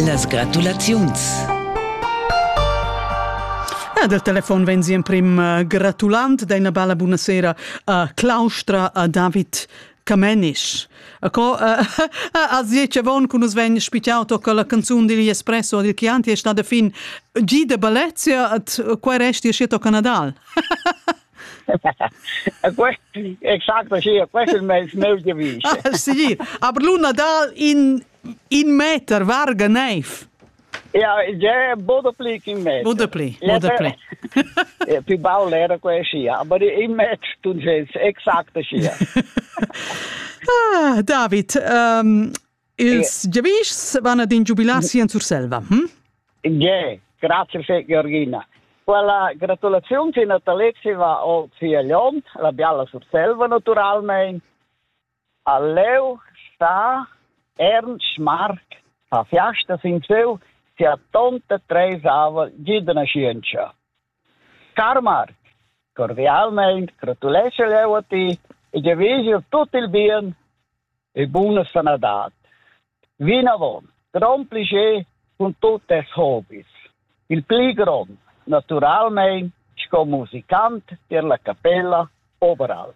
Las gratulaziuns. Ah, del telefon vegn si emprim uh, gratulant d'ina bella buonasera a Claustra a David Camenisch. Acco a ziece von cun us vegn spicciato con la canzun digl Espresso dil Chianti è stata fin G de Balezia at quai resti schietto Canadal. Exacto, sì, questo è il mio, mio device. Sì, aber Luna Dal in, in meter varga neiv. Ja, ja, bodepli in meter. Bodepli, bodepli. ja, più baul era quella, aber in meter tu ges, exacto sia. ah, David, um, Ils giavischs van ad in giubilar si en Surselva. Hm? Yeah, grazie fé Georgina. Quella gratulaziun che Natalexi va al Figliont, la bialla Surselva naturalmente, a Leu sta Ernst Mark a fiasta sin seu sia tonta treisava gidna scienza. Car Marc, cordialmein gratuleschel jeu a ti e giavischel tut il bien e buna sanadad. Vinavon, grond plascher cun tut tes hobis. Il pli grond, naturalmein sco musicant tier la capella Oberalp.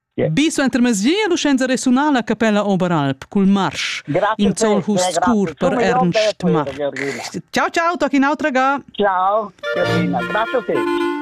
Bi suenter mesgier l'ussenza resunala a capella Oberalp cul marsch in zolhus pur per Ernst Marsch. Ciao ciao, toc in autra ga. Ciao, Carina, grazie a te.